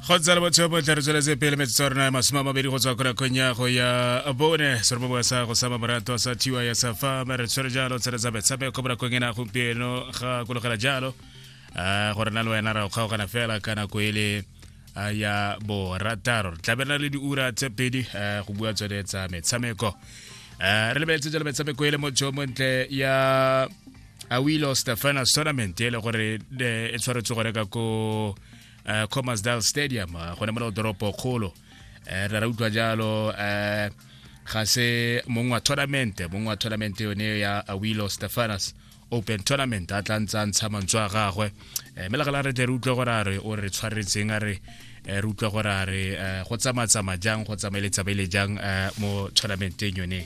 go tsala botsheo bo tla re tsweletse pele metsotso ya rona ya masome a mabedi go tswa ko rakong ya go ya bone seroboboa sa go sama morato sa thiwa ya safa re tshwere jalo tsheletsa metshameko mo rakong ena gompieno ga kologela jalo um gore na le wena ra go kgaogana fela ka nako e le ya borataro re tlabelela le diura tse pedi go bua tsone tsa metshameko um re lebeletse jalo metshameko e le mojo montle ya a wilo stefana tournament e le gore e tshwaretswe gore ka ko eh, commersdal stadium eh, gone mo le doropo kgolo eh, re ra utlwa jalo ga se mongwe wa tournament mongwe wa tournament yone ya awilo stefanas open tournament a tla ntse a ntsha mantswe a gagwe mme le gala re tle re utlwe gore a re o re tshwaretseng a re Eh, re utlwa gore a re eh, go tsamatsama jang go tsamaeletsamaele jang eh, mo tournamenteng yone